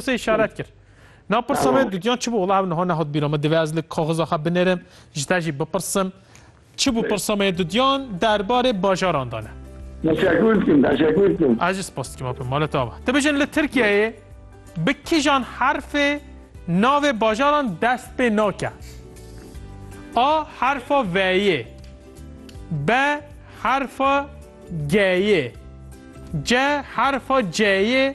Pirsê işaret kir. Na pirsa me dudyan çi bû? Wala ev niha nehot bîra min. Divê ez li kaxiza xwe binerim, ji te jî bipirsim. Çi bû pirsa me dudyan derbarê bajaran dane. Teşekkür dikim, teşekkür dikim. Ez jî spas dikim apê mala te ava. Tu bijin li Tirkiyeyê bi kîjan herfê navê bajaran dest pê nake? A herfa V'yê, B herfa G'yê, C herfa C'yê,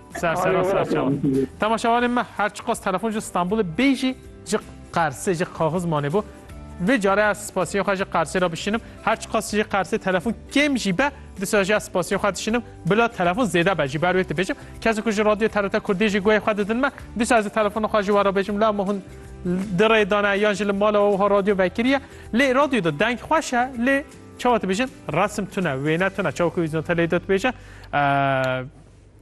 Ser seran ser çavan. Temaşevanên me her çiqas telefon ji Stenbolê bê jî ji Qersê ji kaxiz mane bû. Vê care ez spasiyên xwe ji Qersê re bişînim. Her çiqas ji Qersê telefon kêm jî be disa jî ez spasiyên xwe dişînim. Bila telefon zêde be jî ber wê dibêjim. Kesên ku ji radyoyê TRT Kurdiyê jî guhê xwe didin me disa ez ê telefona xwe ji we re bêjim la me hûn di rê dane yan ji li mala we wiha radyo vekiriye. Lê radyo de deng xweş e lê çawa dibêjin resim tune wêne tune çawa ku Wîzyon Teleyê dotbêje.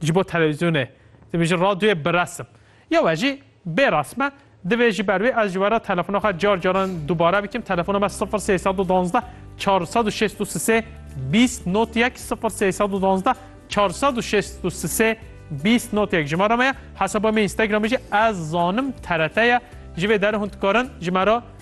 Ji bo televîzyonê, divê ji radyoyê bi resim ya we jî bê resim e, divê ji ber wê ez ji we re telefona xwe car caran dubare bikim, telefona me sifir sey sed û duwazdeh çar sed û şêst û sisê bîst not yek sifir sey sed û duwazdeh çar sed û şêst û sisê bîst not yek jimara me ye, hesaba me Instagramê jî ez zanim TRT ye, ji vê derê hûn dikarin ji me re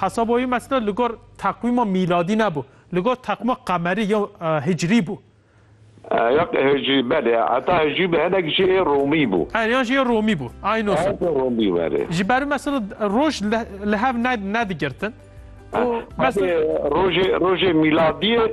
Hesaba wî mesela li gor teqwîma mîladî nebû, li gor teqwîma qemerî ya hicrî bû. Ya hicrî belê, heta hicrî bi hinek jî ê romî bû. Erê yan jî ê romî bû. Ayn o sal. Romî bû erê. Ji ber wî mesela roj li hev nedigirtin. Rojê rojê mîladiyê.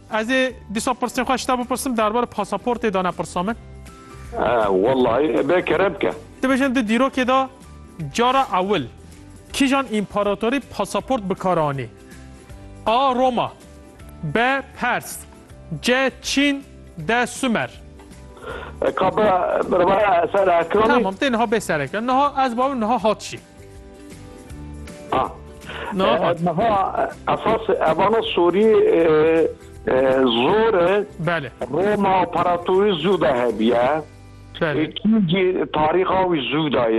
Ez ê dîsa pirsên xwe ji te bipirsim derbarê pasaportê de nepirsa min. Wellahî bê kere bike. Dibêjin di dîrokê de cara ewil kîjan împaratorî pasaport bikar anî? A. Roma B. Pers C. Çîn D. Sumer Ka bira bira eser ekroni. Tamam tê niha bê sereke. Niha ez babim niha hat jî. Niha esas evana sorî zor e Roma operatorî zû de hebîye. Kî jî tarîxa wî zû daye.